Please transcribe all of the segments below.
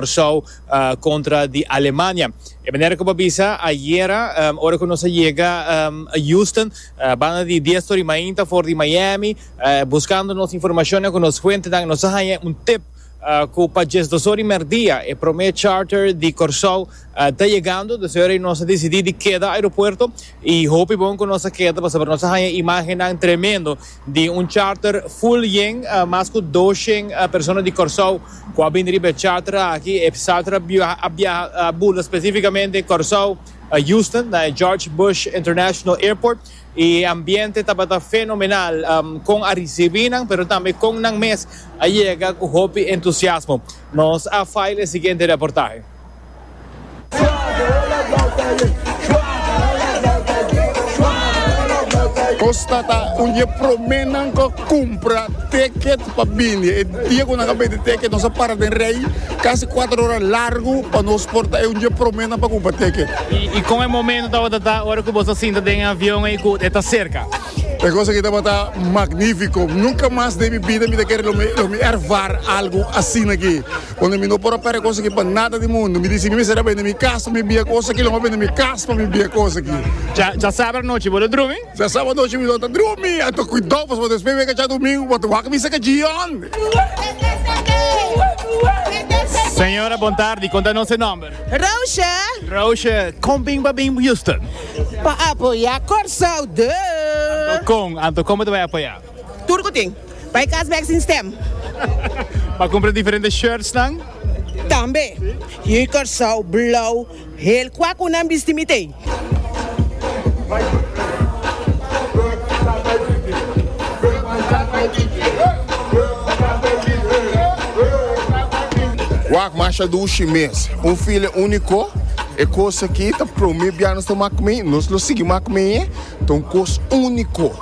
Warschau kontra di Alemania. E manera ku bo a bisa ayera, ora ku nos a yega Houston, banda di dies tor i mainta for di Miami, buskando nos informashon nan ku nos fuentenan, nos a haña un tip ku pa dies dos ora di merdia e promé charter di Kòrsou ta yegando. Despues ayora nos a disidí di keda airopuerto i hopi bon ku nos a keda pasobra nos a haña imágennan tremendo. Di un charter full yen, mas cu dos shen persona di Corsou cu a bini riba e charter aki e charter a biaha a bula specificamente Corsou, Houston na e George Bush International Airport y e ambiente tabata fenomenal con a ricibi nan pero tambe con nan mes a yega cu hopi entusiasmo. Nos a file e siguiente reportahe. Costa ta un di e prome nan cu a cumpra ticket pa bini. E dia cu nan a bende ticket nos a para den rey casi cuatro ora largo pa nos por ta e un di e prome nan pa cumpra ticket. Y con e momento tabata ta ora cu boso a sinta den e avion ey cu e ta cerca? E cos aki tabata magnifico. Nunca mas den mi bida mi ta kere lo mi ervar algo asina aki. Unda mi no por a perde kos aki pa nada di mundu. Mi disi, Mi mester a bende mi kas pa mi bia kos aki, lo mi a bende mi kas pa mi bia kos aki. Dja sabra nochi bo ta drumi? Dja sabra nochi mi lo ta drumi. Anto kuidó pues, bo despues wega dja domingu bo ta wak misa kaji hònde. Señora bon tardi, kon ta nos e nòmber? Roosje. Roosje, kon bin pa bin Houston? Pa apoyá Kòrsou, duh. Anto kon, anto kon bo ta bai apoyá? Tur cu tin. Bay cas bek sin stem. Pa cumpra diferente shirts nan. Tambe. Hier Curaçao, blauw, heel cua cu nan bisti mi tey. Wak masha dushi mes. Un file unico. E cos aki ta prome bia nos ta macme. Nos lo sigui macme. Ta un kos úniko.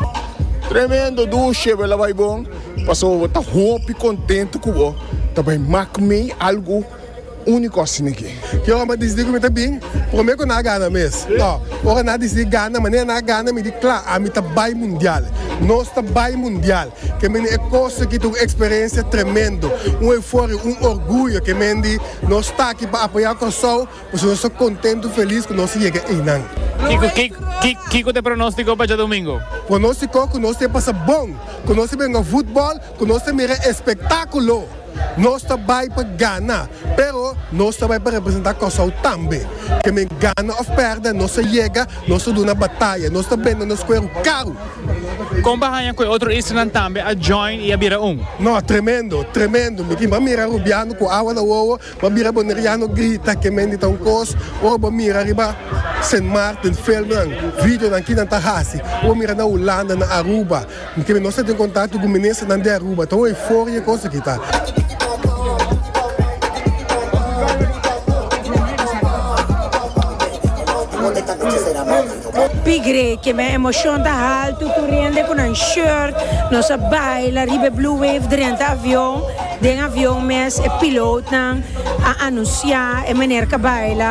Tremendo dushe bo la bai bon pasobra bo ta hopi kontentu ku bo ta bai mak mei algu úniko asina ke. Ke ora mi a disidi ku mi ta bin? Promé ku nan a gana mes. Tò, ora nan a disidi gana manera nan a gana mi di kla, ami ta bai mundial. Nos ta bai mundial. Ke mendi e kos aki ta un eksperensia tremendo, un euforia, un orguyo ke mendi nos ta aki pa apoyá Kòrsou. Pasobra nos ta kontentu i felis ku nos a yega einan. Kiko ta e pronóstiko pa djadumingu? Pronóstiko ku nos ta e pasa bon, ku nos ta benga futbòl, ku nos ta mira e spektákulo. Nos ta bai pa gana, pero nos ta bai pa representá Kòrsou tambe. Ke men gana òf pèrdè, nos a yega, nos a duna bataya, nos ta bende nos kueru karu. Kon bo a haña ku e otro islanan tambe a join i a bira un? No, tremendo, tremendo. Mi tin pa mira Rubiano ku awa na wowo. Bo bira boneriano grita ke mendi ta un kos ora bo mira riba Sint Maarten filmnan videonan kinan ta hasi ku bo mira na Hulanda na Aruba kende nos ta tin kontakto ku ministernan di Aruba ta un euforia e kos aki ta. Pigre ke men emocion ta haltu tur hende cu nan shirt nos a baila riba e blue wave drenta avion, den avion mes e pilootnan a anuncia e meneer ca baila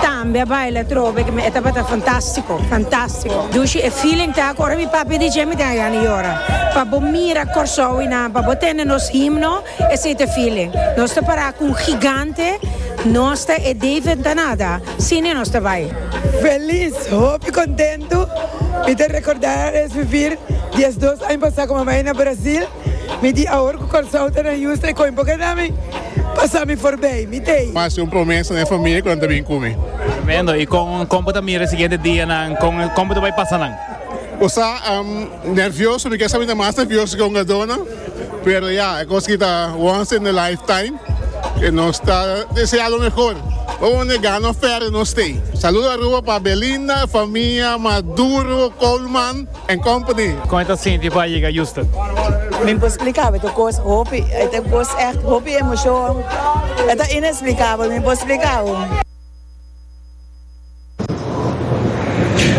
tambe a baila atrobe ke men e tabata fantastico fantastico dushi e feeling ta cu ora mi papia a DJ mi tin a gana yora pa bo mira Corsou y nan pa bo tende nos himno esey ta e feeling nos ta para cu un gigante nos ta e David Danada. Cine nos ta bai. Felis, hopi contento. Mi ta recorda es vivir dies dos aña pasa cu mi a bai na Brasil. Mi di awor cu Corsou ta na Houston e coin por keda mi pasa mi for bay. Mi tey. Mi haci un promesa na e familia cu nan ta bin cu mi. Tremendo. Y con, con bo ta mira e siguiente dianan? Con, con bo ta bai pasa nan? Bo sa, am nervioso, mi kier sa mi ta mas nervioso cu un adona. Pero ya, e cos aki ta once in a lifetime, y nos ta desea lo mehor. Vamos a nega no fere nos stay. Saludo Aruba pa Belinda, famia, Maduro, Coleman and company. Con e ta sinti pa yega Houston? Mi por splica bo e ta cos hopi, e ta cos echt hopi emocion. E ta inexplicabel, mi por splica bo.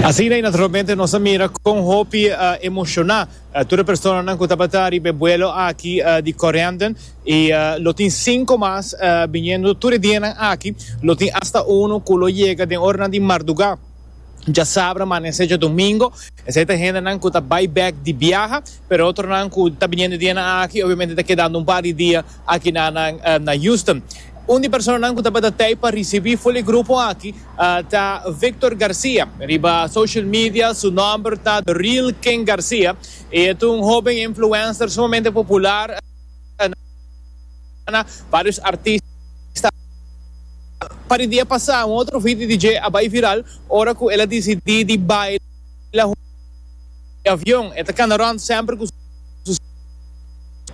Asina y naturalmente nos a mira con hopi emociona Tur e personanan ku tabata riba e buelo aki di Corendon i lo tin sinku mas biniendo tur e dianan aki, lo tin asta unu ku lo yega den oranan di mardugá, djasabra manese dje domingo. Esei ta hendenan ku ta bai bèk di biaha, pero otronan ku ta biniendo e dianan aki, obviamente ta kedando un par di dia Aki na nan na Houston. Un di personanan cu tabata tey pa ricibi ful e grupo aki ta Victor Garcia. Riba social media su nomber ta The Real King Garcia. E ta un hoben influencer sumamente popular na varios artista. Pa di dia pasa un otro video di dje a bay viral ora cu el a dicidi di baila hunto cu Victor Garcia. di avion. E ta kana rònt semper ku su sèks.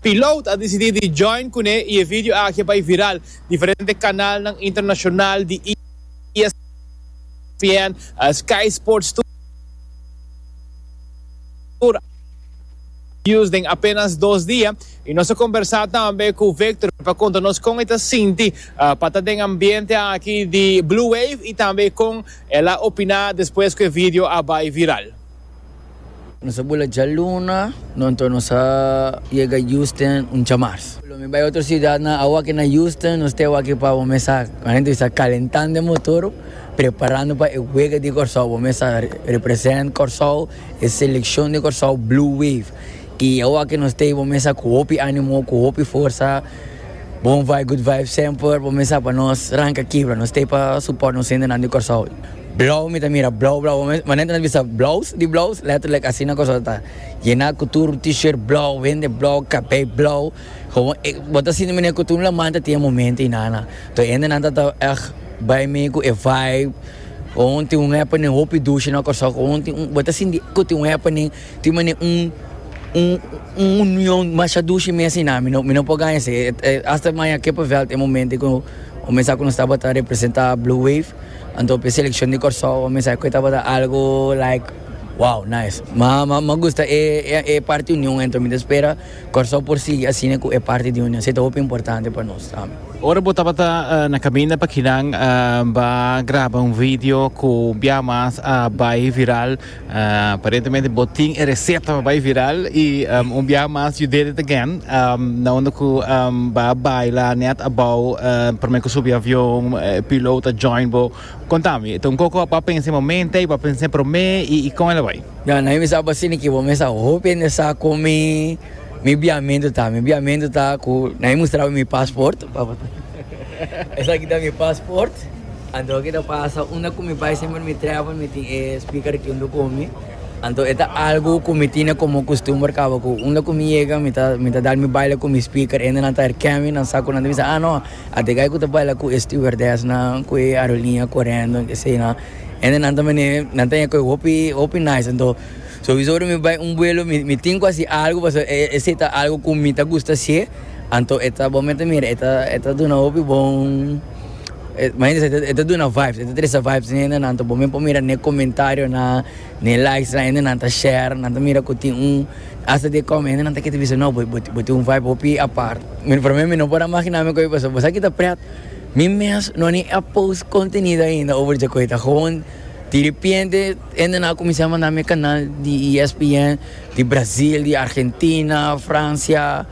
Pilot a disidí di join kuné i e video aki a bai viral. Diferente kanalnan internashonal di ESPN, Sky Sports tur a bius den apénas dos dia. I nos a kombersá tambe ku Victor pa konta nos kon e ta sinti pa ta den ambiente aki di Blue Wave i tambe kon el a opiná despues ku e video a bai viral. Nos a bula djaluna, no anto nos a yega Houston un djamars. Lo mi bai otro ciudad nan awaki na Houston, nos te awaki pa bo mesa adentro di sa calentando e motor, preparando pa e wega di Corsou, bo mesa represent Corsou, e seleccion di Corsou Blue Wave, y awaki nos te bo mesa cu hopi animo, cu hopi forsa, bon vibe, good vibe semper, bo mesa pa nos ranca kibra, nos te pa support nos hendenan di Corsou. Blauw mi ta mira blauw blauw manera ta bisa blouse di blouse letterlijk asina cosa ta yena cu tur t-shirt blauw hende blauw cabei blauw gewoon e bo ta sinti manera cu tur laman ta tin e momento y nana toer hende nan ta ag bay mee cu e vibe gewoon tin un happening hopi dushi na Curaçao gewoon tin un bo ta sinti cu tin un happening tin manera un un un union masha dushi mes y nan mi no por gana esey hasta maya kippenvel ta e momento cu comensaba ta representa blue wave. Anto p'e selekshon di Kòrsou a mester ku e tabata algu like wow nice. Ma m'a gusta e e parti union ento mi ta spera Kòrsou por sigui asina ku e parti di union. Si ta hopi importante pa nos tambe. Ora bo tabata na kaminda pa kinan, bo a graba un video ku bia mas a bai viral. Aparentemente bo tin e reseta pa bai viral y un biaha mas you did it again na unda cu ba baila net abao prome cu subi avion e piloot a join bo contami ta un coco apa pensa e momente y apa pensa prome y con el a bai? Ya na mi sa apa asina ki bo mes a hopi hende sa con mi biahamento ta mi biahamento ta cu na mi mustraba mi passport. Esaki ta mi pasport. Anto aki ta pasa unda ku mi bai semper mi trèvel mi tin e speaker aki unda ku mi. Anto e ta algu ku mi tine komo kustumber kaba ku unda ku mi yega mi ta mi ta dal mi baila ku mi speaker. Hende nan ta herken mi, nan sa ku nan ta bisa, ah no, a Degai ku ta baila ku e stewardesnan, ku e aeroliña korendo, ke sé nan. Hende nan ta mene nan ta yega ku e hopi hopi nice. Anto sowieso ora mi bai un buelo mi mi tin ku a hasi algu pasobra esei ta algu ku mi ta gusta hasié. Anto e ta bo me ta mira e ta e ta duna hopi bon e mañana se e ta duna vibes e ta tresa vibes ne hendenan anto bo me por mira ne comentarionan ne likes nan hendenan ta share nan ta mira ku tin un hasta di e kòm hendenan ta kere bisa no bo bo bo tin un vibe hopi apart mi promé mi no por a magina mi ku a paso bo sa ki ta pret mi mes no ni a post kontenido ainda over dje ku e ta gewoon diripiente hendenan a kuminsá a manda mi e kanal di ESPN. Di Brasil, di Argentina, Francia,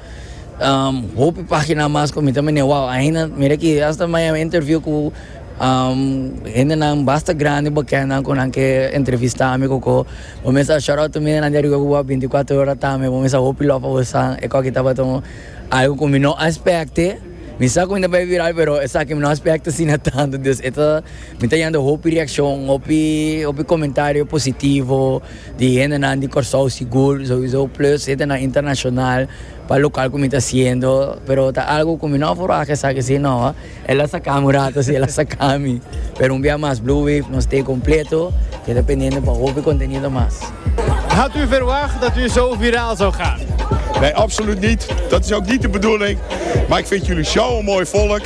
um, hopi pagina mas cu mi ta mene wow, ainda, mira aki, hasta mi a interview cu, um, hendenan basta grandi, bekendnan cu nan ke entrevista mi, koko. Bo mes a shout-out ta mira nan di ariba cu bo a binti kuater ora tambe, bo mes a hopi love pa bo san, e koki tabata un algo cu mi no a specte, mi sa cu mi ta bay viral, pero esaki mi no a specte asina tanto, dus e ta, mi ta yanda hopi reaccion, hopi, hopi comentario positivo. Di hendenan di Kòrsou sigur, souizo, plus hendenan internashonal pa lokal ku mi ta hasiendo. Pero ta algu ku mi no a forwá ku esaki si no. El a saka mi un rato si, el a saka mi. Pero un bia mas, Blue Wave no stay kompleto. Keda pendiente pa hopi kontenido mas. Had u verwacht dat u zo viraal zou gaan? Nee, absoluut niet. Dat is ook niet de bedoeling. Maar ik vind jullie zo'n mooi volk.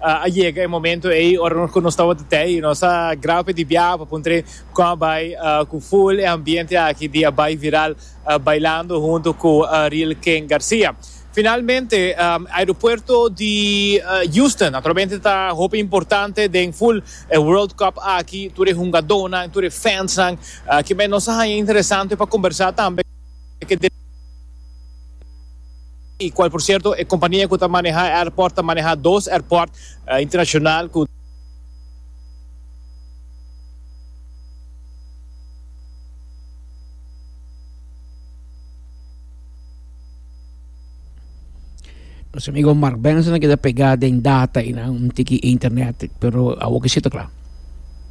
A yega e momento ei ora ku nos tabata te i nos a graba pe di biaha pa puntra kon a bai ku full e ambiente aki di a bai viral bailando hunto ku Ariel Ken Garcia. Finalmente aeropuerto di Houston naturalmente ta hopi importante den full e World Cup aki tur e hungadónan tur e fansnan kimen nos a haña interesante pa kombersá tambe ku y cual por cierto e compania cu ta maneha e aeroport ta maneha dos aeroport internacional cu. Nos amigo Mark Benson a keda pegá den data y nan un tiki internet, pero awor ke si ta kla.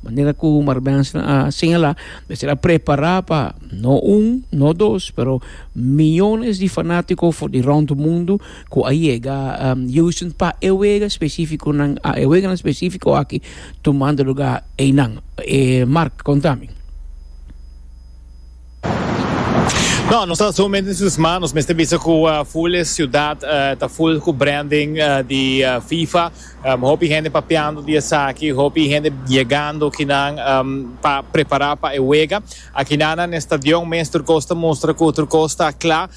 Manera ku Marbenson a señalá, mester a prepará pa no un, no dos, pero miyones di fanátiko for di rònt mundu ku a yega Houston pa e wega espesífikonan, e weganan espesífiko aki tumando lugá einan. Mark, konta mi. No, nos ta so mente entusiasma, nos mester bisa cu full e ciudad ta full cu branding di FIFA, hopi hende papiando di esaki, hopi hende yegando kinan pa prepara pa e wega, aki nan na e stadion mes tur cos ta mustra cu tur cos ta cla,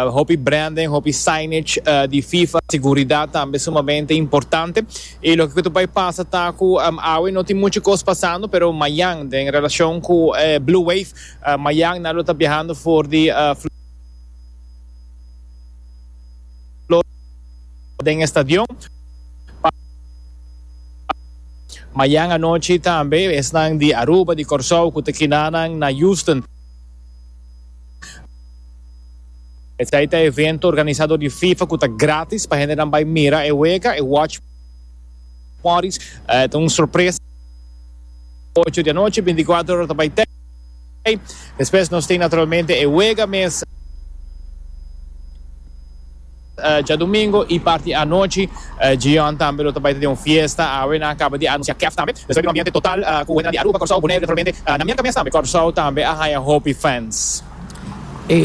hopi branding, hopi signage di FIFA, seguridad tambe sumamente importante, y loke cu ta bay pasa ta cu awe no tin mucho cos pasando pero mayan den relacion cu Blue Wave. Mañana lo ta biahando for di Florida den e stadion pa mañan anochi tambe esnan di Aruba, di Corsou cu ta kina nan na Houston. Esai ta evento organisa dor di Fifa cu ta gratis pa hendenan bay mira e wega, e watch. Morris ta un sorpresa. Ocho di anochi, binticuater ora ta bay tei. Despues nos tin naturalmente e wega mes djadomingo y parti anochi Gion tambe lo ta bay ta den un fiesta. Awe nan a caba di anuncia Kef tambe. Despues bin un ambiente total cu wentenan di Aruba, Corsou, Bonaire naturalmente na mierca mes tambe. Corsou tambe a haya hopi fans.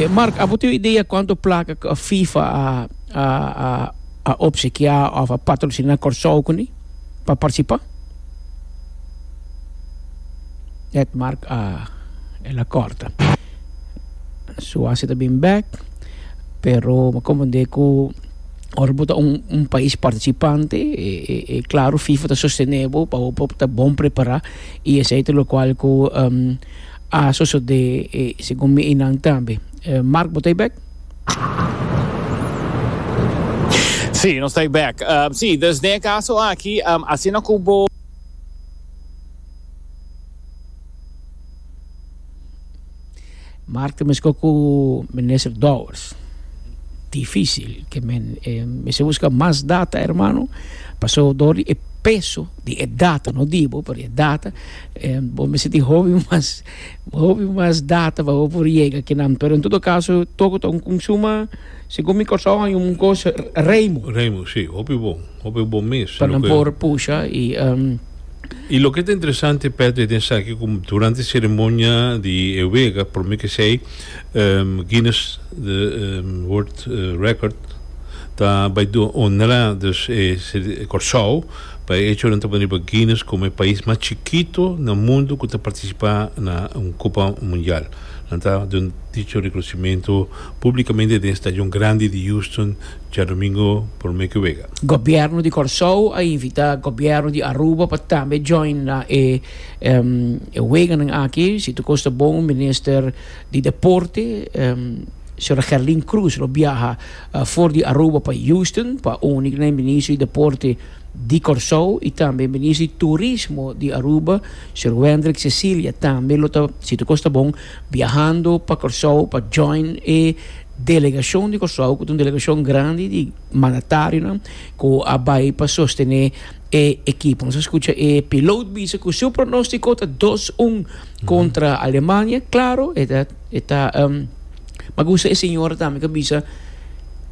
Mark, abo tin un idea cuanto placa cu FIFA a. A opsekiá òf a patrosiná Kòrsou kuné pa partisipá. Ed Marc a el a kòrta su hasi ta bin bèk pero mi a komprendé ku ora bo ta un pais partisipante e klaru fifa ta sostené bo pa bo por ta bon prepará i esei ta lokual ku a sosodé segun mi einan tambe. Marc bo ta ei bèk? Sí, nos ta back. Um, sí, dus den e caso aki, um, asina cu bo... Mark mesco cu minister Dowers. Difícil que men eh, men se busca más data, hermano. Pasó door di e peso di e data, no dibo, pero e data. Eh, bo me sentí joven, mas Hopi mas data pa bo por yega kinan, pero en todo caso toco ta un consuma, segun mi Curaçao hay un cos Reymo. Reymo si, hopi bon, hopi bon mes. Pa nan por pusha y. Y loke ta interesante Petro den esaki cu durante ceremonia di e wega prome kesey Guinness World Record ta bay honra dus e Curaçao. Pa e echonan ta baniba Guines komo e pais mas chikito na mundu ku ta partisipa na un Kopa Mundial. Nan ta duna dicho rekonsimiento públikamente den stadion grandi di Houston djadomingo promé ku wega. Gobierno di Kòrsou a invitá Gobierno di Aruba pa tambe join na e e weganan aki. Si tur kos ta bon Minister di Deporte, Señora Gerlin Cruz lo biaha for di Aruba pa Houston pa uni ku nan e Ministro di Deporte, di Kòrsou i tambe Minister di Turismo di Aruba, Sr. Wendrick Cecilia, tambe lo ta Sito Kosta Bon biahando pa Kòrsou pa join e delegashon di Kòrsou ku ta un delegashon grandi di mandatarionan ku a bai pa sostené e ekipo. Nos a skucha e pilot bisa ku su pronóstiko ta dos un kontra Alemania. Klaro, e ta. E ta pa gusta e señora tambe ta bisa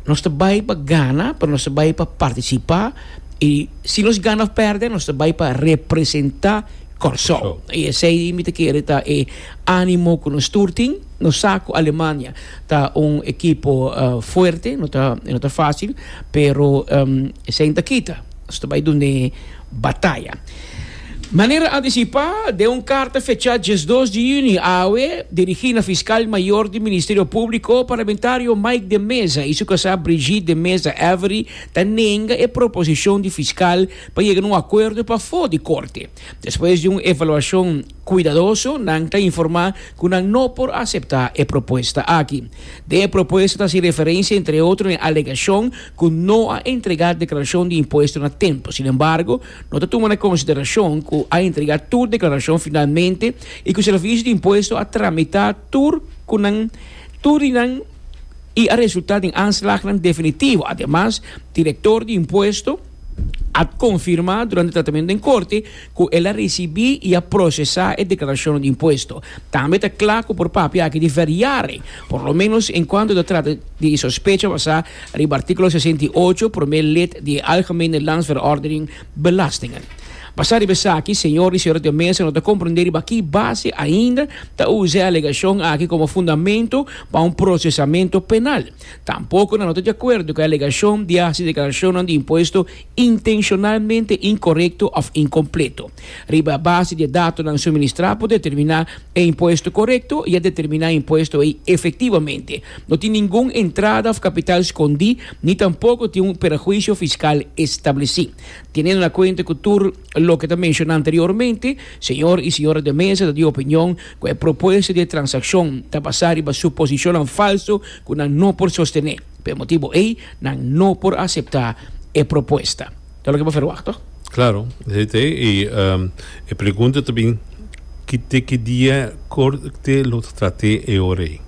nos ta bai pa gana pero nos ta bai pa participa y si nos gana of perde nos ta bai pa representa Kòrsou y esei mi ta kere ta e animo ku nos tur tin nos sa ku Alemania ta un ekipo fuerte no ta no ta fácil pero esei no ta kita nos ta bai dun'é. bataya. Manera antisipá, den un karta fechá diesdos di yüni awe, dirigí na Fiskal Mayor di Ministerio Públiko, parlamentario Mike de Meza i su kasá Brigitte de Meza Avery ta nenga e proposishon di fiskal pa yega na un akuerdo pafó di Korte. Despues di un evaluashon kuidadoso, nan ta informá ku nan no por aseptá e propuesta aki. Den e propuesta ta hasi referensia entre otro na e alegashon ku no a entregá deklarashon di impuesto na tempu. Sin embargo, no ta tuma na konsiderashon ku a entregá tur deklarashon finalmente i ku Servisio di Impuesto a tramitá tur ku nan tur di nan i a resultá den aanslagnan definitivo. Ademas, Direktor di Impuesto a konfirmá durante tratamentu den korte ku el a risibí i a prosesá e deklarashonnan di impuesto. Tambe ta kla ku por papia aki di verjaren, por lo menos en kuantu ta trata di e sospecha basá Riba artíkulo sesenta i ocho, promé lid di e Algemene Landsverordening Belastingen. Basá riba esaki, señor i señora den mesa no ta komprendé riba ki base ainda ta usa e alegashon aki komo fundamentu pa un prosesamentu penal. Tampoko nan no ta di akuerdo ku e alegashon di hasi deklarashonnan di impuesto intenshonalmente inkorekto òf inkompleto. Riba base di e datonan suministrá por determiná e impuesto korekto i a determiná e impuesto ei efektivamente. No tin ningun entrada òf kapital skondí ni tampoko tin un perhuisio fiskal establesí. Tenendo na kuenta ku tur loke ta menshoná anteriormente, señor i señora de mesa ta di opinion ku e propuesta di e transakshon ta basá riba suposishonnan falso ku nan no por sostené. P'e motibu ei nan no por aseptá e propuesta. Ta loke bo ferwagt to? Klaro, esei ta ei. I e pregunta ta bin, Ki te ki dia Korte lo ta trat'é e ora ei?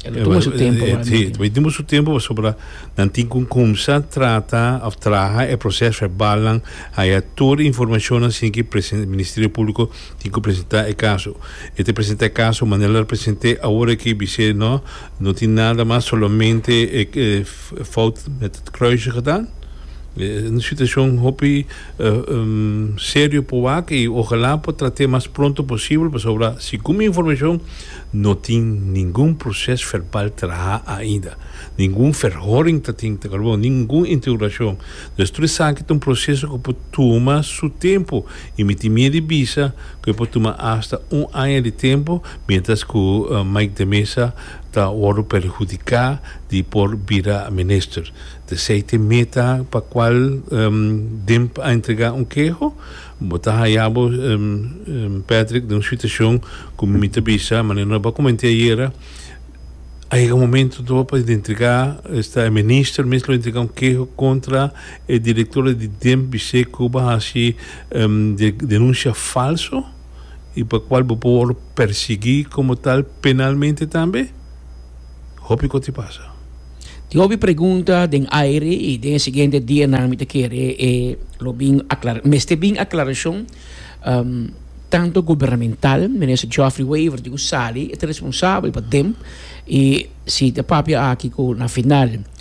E lo tuma su tempu pa. Sí, ta bin tuma su tempu pasobra nan tin ku kumsa trata òf traha e proses verbalnan, haya tur e informashonnan sin ki Ministerio Públiko tin ku presentá e kaso. E ta presentá e kaso manera lo present'é awor aki bis'é, nò. No tin nada mas solamente e fout met het kruisje gedaan. Un situacion hopi serio por wak y ojalá por trate mas pronto posibel pasobra segun mi informacion no tin ningun proces verbal traha ainda. Ningun verhoring ta tin ta kor bo, ningun interrogacion. Dus tur esaki ta un proceso cu por tuma su tempo. I mi tin miedu di bisa ku e por tuma asta un aña di tempu miéntras ku Mike de Meza ta wòrdu perhudiká di por bira minister. Tese ta e meta pa kual Demp a entregá un keho. Bo ta haya bo, Patrick, den un situashon ku mi ta bisa manera nos a koment'é ayera, a yega un momentu tor pa entregá, esta e minister mes lo entregá un keho kontra E director di Demp bis'é cu bo a haci denuncia falso y pa cual bo por worde persegui como tal penalmente tambe. Hopi cos tin pasa. Tin hopi pregunta den aire y den e siguiente dianan mi ta kere e lo bin aclara, mester bin aclaracion tanto gubernamental, Minister Geoffrey Wever di cu sali e ta responsabel pa Demp y si ta papia aki cu na final.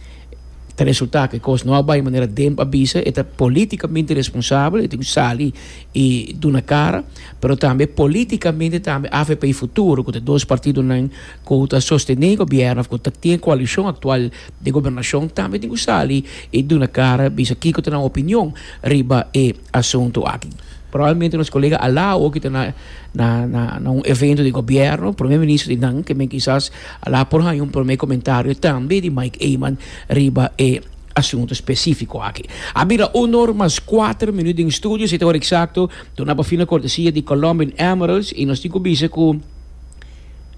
ta resulta cu e cos no a bay manera Demp a bisa, e ta politicamente responsabel, e tin cu sali y duna cara, pero tambe politicamente tambe afp Futuro cu ta dos partidonan cu ta sostene gobierno of cu ta tin e coalicion actual di gobernacion tambe tin cu sali y duna cara bisa kico ta nan opinion riba e asuntu aki. Probablemente nos colega a la oki ta na na na na un evento di gobierno, prome ministro di nan ke men kisas a la por haña un prome comentario tambe di Mike Eman riba e asuntu specifico aki. A bira un or mas cuater minuut den studio, si ta ora exacto, duna pa fin na cortesia di Colombian Emeralds y nos tin cu bisa cu,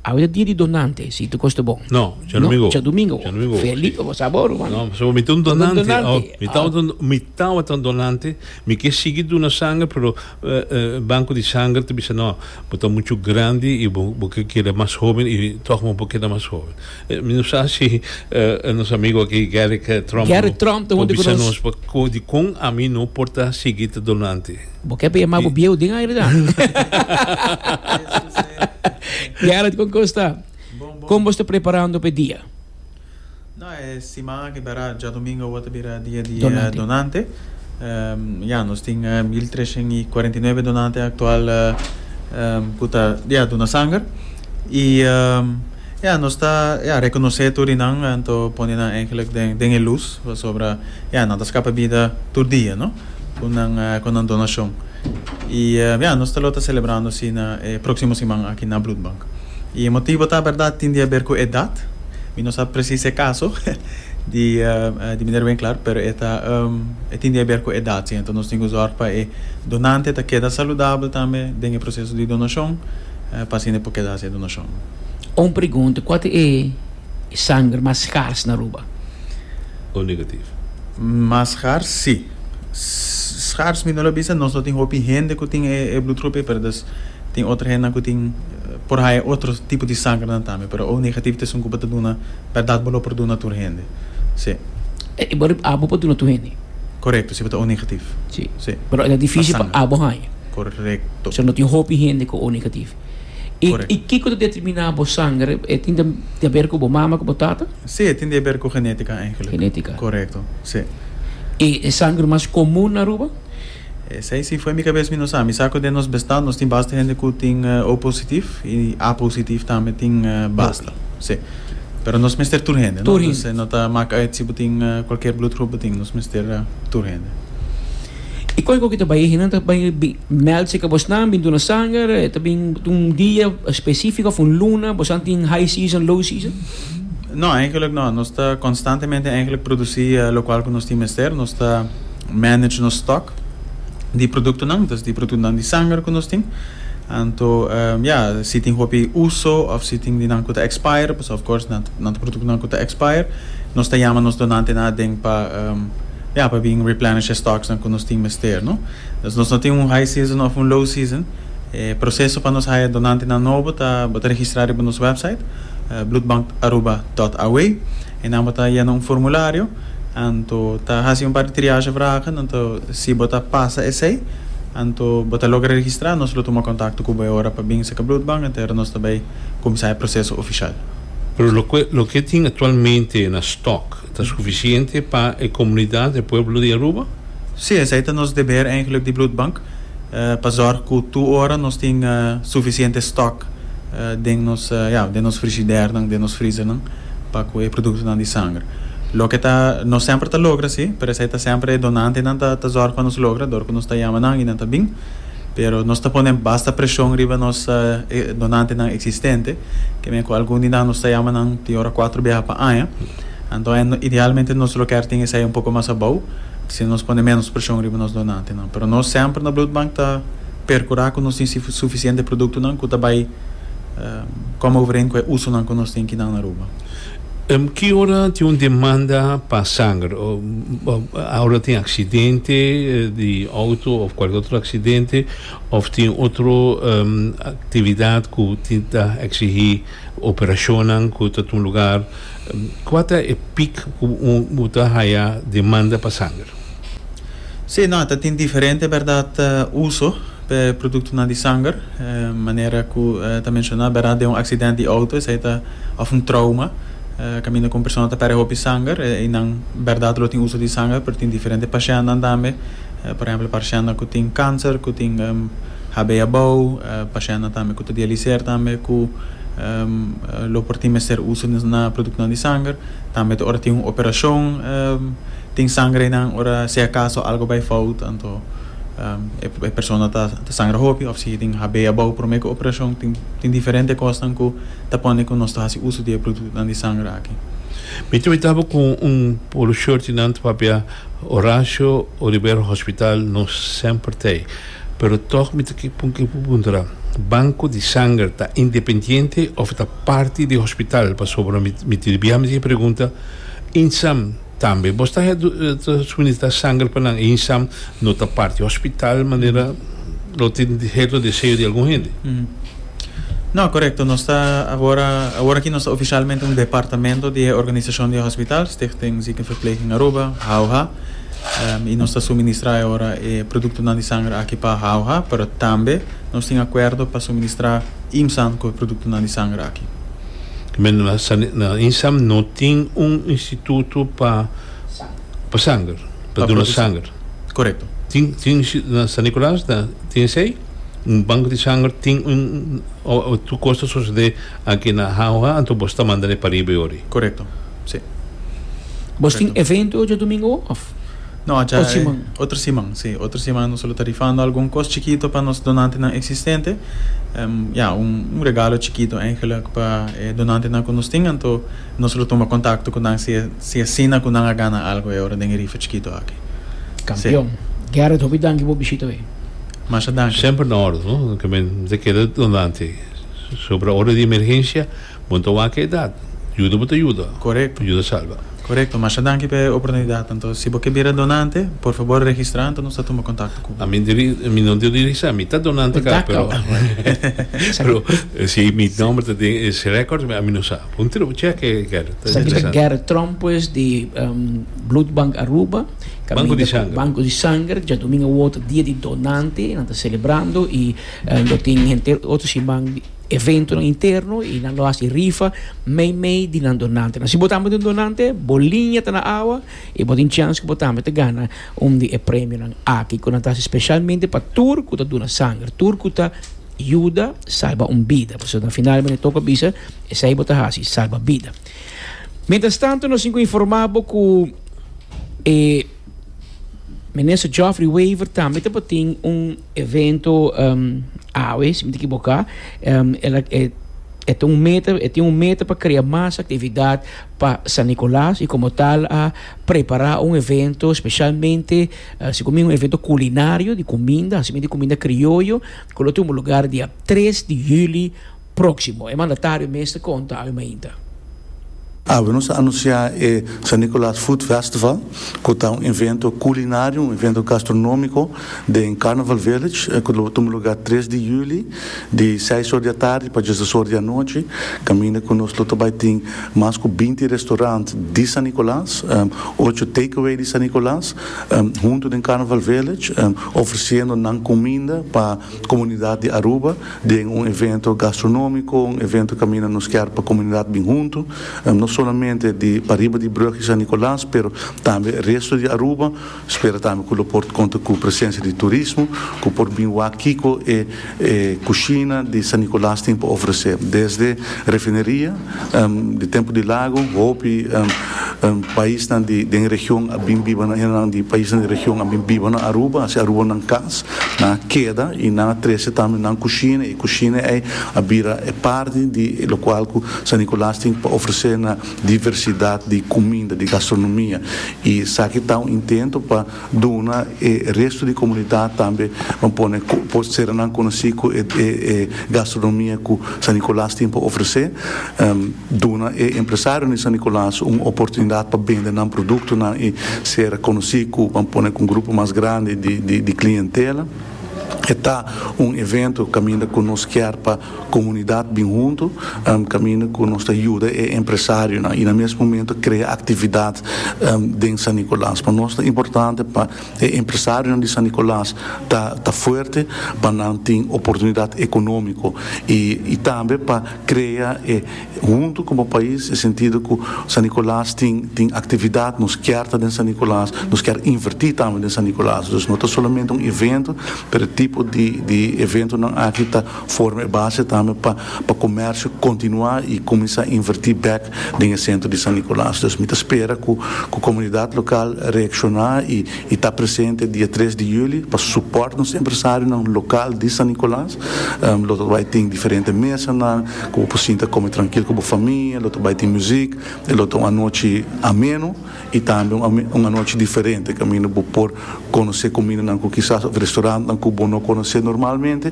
Awor ta dia di donante, si tu koste bon. No, Djadomingo. Djadomingo. Djadomingo. Feli, bo sa bo Ruman. No, pasobra mi ta un donante. Bo ta un donante. Oh, mi tabata un, mi tabata un donante. Mi ke sigui duna sanger, pero banko di sanger ta bisa, no, bo ta muchu grandi i bo, bo ke keda mas hoben i tòg bo por keda mas hoben. Mi no sa si nos amigo aki Gerrit Tromp, Gerrit Tromp, ta hopi ku nos, por bisa nos di kon ami no por ta sigui ta donante. Bo ke yama bo bieu den aire dan. Gerrit kon kosta? Kon bo's ta preparando p'e dia? No, e siman aki bera djadomingo awor ta bira dia di donante. Ya, nos tin mil treshen i kuarenta i nuebe donante aktual ku ta ya duna sanger. I ya nos ta ya rekonosé tur di nan, anto pone nan eigenlik den e lus pasobra ya nan ta skapa bida tur dia no. cu nan cu nan donacion. Y ya, nos ta lo ta celebrando asina e proximo siman aki na Bloedbank. Y e motibo ta berdad tin di haber cu edad, mi no sa precies e caso di di Meneer Winkler, pero e ta e tin di haber cu edad si. Enton nos tin cu zorg pa e donante ta keda saludabel tambe den e proceso di donacion pa asina e por keda haci e donacion. Un pregunta, cua ta e. E sanger mas skars na Aruba? O negativo? Mas skars si. Skars mi no lo bisa, nos lo tin hopi hende ku tin e blutgroep ei, pero des tin otro hendenan ku tin, por haya otro tipo di sangernan tambe, pero O negativo ta esun ku bo ta duna, bèrdat bo lo por duna tur hende. Si. E bo rip abo por duna tur hende? Korekto, si bo ta O negativo. Si. Si. Pero e ta difísil pa abo haña. Korekto. Pasobra no tin hopi hende ku O negativo. I Correct. i kiko ta determiná bo sanger? E tin ta ta haber ku bo mama ku bo tata? Sí, e tin di haber ku genética eigenlijk. Genética. Correcto, sí. I e sanger mas komun na Aruba? Esei sí fo'i mi kabes mi no sa. Mi sa ku den nos bestad nos tin basta hende ku tin O positif i A positif tambe tin basta. Hopi. Sí. Pero nos mester tur hende, no? Tur hende. Nos no ta mak uit si bo tin kualkier bloedgroep bo tin, nos mester tur hende. I koiko ki ta bai e nan ta bai mèld si ke bosnan bin duna sanger e ta bin un dia spesifiko òf un luna bosan tin high season low season? No, eigenlik no. Nos ta konstantemente eigenlik produsí lokual ku nos tin mester. Nos ta manage nos stòk di produktonan, dus di produktonan di sanger ku nos tin. Anto ya, si tin hopi uso òf si tin di nan ku ta expire, pasobra of course nan ta produktonan ku ta expire, nos ta yama nos donantenan aden pa. Ya pa bin replenish e stocks nan cu nos tin mester, no? Entonces nos no tin un high season of un low season. E proceso pa nos haya donantenan nobo ta bo ta registra riba nos website bloedbankaruba.aw y nan bo ta yena un formulario anto ta haci un par di triage vragen anto si bo ta pasa esey anto bo ta logra registra nos lo tuma contacto cu bo e ora pa bin sa ca bloedbank anto e ora nos ta bay cuminsa e proceso oficial. Pero loke tin actualmente na stock? Ta sufisiente pa e komunidat, e pueblo di Aruba? Sí, esei ta nos deber eigenlik di Bloedbank, pa zorg ku tur ora nos tin sufisiente stòk den nos, ja, den nos frigidèrnan, den nos freezernan pa ku e produktonan di sanger. Loke ta, nos semper ta logra sí, pero esei ta semper e donantenan ta ta zorg pa nos logra dor ku nos ta yama nan i nan ta bin. Pero nos ta pone basta preshon riba nos donantenan eksistente, ke men ku algun di nan nos ta yama nan tin ora kuater biaha pa aña. Anto idealmente nos lo kier tin esei un poko mas abou, asina nos pone menos preshon riba nos donantenan. Pero nos semper na Bloedbank ta perkurá ku nos tin sufisiente produktonan ku ta bai kòm overeen ku e usonan ku nos tin kinan na Aruba. Ki ora tin un demanda pa sanger ora tin aksidente di outo òf kualke otro aksidente òf tin otro aktividat ku tin ta eksigí. Operashonnan ku ta tuma lugar. Kua ta e pik ku bo ta haya demanda pa sanger? Sí, no, ta tin diferente bèrdat uso p'e produktonan di sanger. Manera ku ta menshoná bèrdat den un aksident di outo esei ta òf un trouma kaminda ku un persona ta pèrdè hopi sanger i nan bèrdat lo tin uso di sanger pero tin diferente pashennan tambe por ehèmpel parshennan ku tin kanser ku tin. Habei abou, pashèntnan tambe ku ta dialiser tambe ku lo por tin mester uso na produktonan di sanger, tambe ta ora tin un operashon tin sanger einan ora si akaso algo bai fout anto e persona ta sangra hopi òf si e tin habei abou promé ku operashon tin diferente kosnan ku ta pone ku nos ta hasi uso di e produktonan di sanger aki. Mi ta mitaba ku un polo shortinan ta papia Horacio Olivero Hospital nos semper t'ei. Pero tog mi ta ke puntra, banko di sanger ta independiente of ta parti di hospital? Pasobra mi tin di bia mi di e pregunta Insam tambe bo sta suministra sanger pa nan e Insam no ta parti di hospital manera lo tin heto deseo di algun hende? No, korekto nos ta awor awor aki nos ta ofisialmente un departamento di e organisashon di e hospital, Stichting Ziekenverpleging Aruba, HAUH. i nos ta suministrá e ora e produktonan di sanger aki pa Hauha, pero tambe nos tin akuerdo pa suministrá IMSAN ku e produktonan di sanger aki. Na IMSAN no tin un instituto pa sanger, pa duna sanger? Korekto. Tin na San Nikolaas ta tin esei, un bank di sanger tin tur kos ta sosodé aki na Hauha, anto boso ta manda ne pa riba e ora ei? Korekto. Sí. Bos tin Correcto. evento ocho domingo of? No, acha Ot siman. eh, otro siman, sí. Otro siman nos lo ta rifando algun cos chikito pa nos donantenan existente. Em, ya, un, un regalo chikito eigenlijk pa e donantenan cu nos tin. Anto nos lo tuma contacto cu nan si e, si e asina cu nan a gana algo e ora den e rifa chikito aki. Campeon. Gerrit, hopi danki bo bishita hoy. Masha danki. Semper na orde, no? Ke men ta keda donante. So, para ora di emergencia, Bo no ta wak e edat. Yuda bo ta yuda. Korekto. Yuda salba. Korekto. Masha danki pa e oportunidat. Anto si bo ke bira donante, por fabor registra anto nos ta tuma kontakto ku bo. Ami di ri, mi no di registrá. Mi ta donante ka, pero pero si mi nòmber ta den e rèkòrds mi, ami no sa. Por un tira bo chèk e Gerrit. Ta Esaki ta interesante. Gerrit Tromp pues di Bloedbank Aruba. Banko di Sanger. Banko di Sanger. Djadomingo awoto dia di donante. Nan ta selebrando i lo tin henter otro siman. Eventonan interno y nan lo haci rifa meimei di nan donantenan. Si bo tambe ta un donante, bo liña ta na awa y bo tin chance cu bo tambe ta gana un di e premionan aki cu nan ta haci specialmente pa tur cu ta duna sanger, tur cu ta yuda salba un bida. Pasobra na final mi toca bisa esey bo ta haci, salba bida. Mientras tanto nos tin cu informa bo cu e. Minister Geoffrey Wever tambe ta por tin un evento um, awe, si mi te ekiboká. Um, el, a- e, e ta un meta, e tin un meta pa krea mas aktividat pa San Nicolas i komo tal a prepará un evento spesialmente, ah, si ku mi un evento kulinario, di kuminda, hasi mi di kuminda krioyo, ku lo tumba lugar dia tres di hüli. Próksimo e mandatario mester konta awe mainta. Awe nos a anunsiá e San Nicolaas Food Festival, ku ta un evento kulinario, un evento gastronómiko den Carnaval Village, ku lo tuma lugá tres di juli, di seis or di atardi pa djesdes or di anochi, kaminda ku nos lo ta bai tin mas ku binti restorant di San Nicolaas, ocho takeaway di San Nicolaas huntu den Carnaval Village, ofresiendo nan kuminda pa. Comunidad di Aruba den un evento gastronomico, un evento caminda nos kier pa comunidad bin hunto, no solamente di pariba di brug y San Nicolas, pero tambe resto di Aruba, spera tambe cu lo por conta cu presencia di turismo cu por bin wak kico e e cushina di San Nicolas tin pa ofrece, desde refineria, Di tempu di lagu, hopi paisnan di den region a bin biba na hendenan di paisnan di region a bin biba na Aruba, a hasi Aruba nan cas, nan a keda y nan a trece tambe nan cushina y cushina ey a bira e parti di locual cu San Nicolas tin pa ofrece na diversidad di cuminda, di gastronomia y esaki ta un intento pa duna e resto di comunidad tambe un pone por ser nan conoci cu e e gastronomia cu San Nicolas tin pa ofrece, duna e empresario di San Nicolas un oportunidad pa bende nan productonan y ser conoci cu ban pone cu un grupo mas grandi di di di clientela. E ta un evento caminda cu nos kier pa. Komunidat bin huntu kaminda ku nos ta yuda e empresarionan i na mes momento krea aktividat den San Nikolas. Pa nos ta importante pa e empresarionan di San Nikolas ta ta fuerte pa nan tin oportunidat ekonómiko i i tambe pa krea e huntu komo pais e sentido ku San Nikolas tin tin aktividat nos kier ta den San Nikolas nos kier invertí tambe den San Nikolas. Dus no ta solamente un evento pero e tipo di di eventonan aki ta. Forma e base tambe pa pa comercio continua y cuminsa inverti bek den e centro di San Nicolas. Dus mi ta spera cu cu comunidad local reacciona y y ta presente dia tres di juli pa support nos empresarionan local di San Nicolas. Lo ta bay tin diferente mesanan cu bo por sinta come trankil cu bo famia, lo ta bay tin music y lo ta un anochi ameno. I tambe un anochi diferente kaminda bo por konosé kumindanan ku kisas òf restorantnan ku bo no konosé normalmente.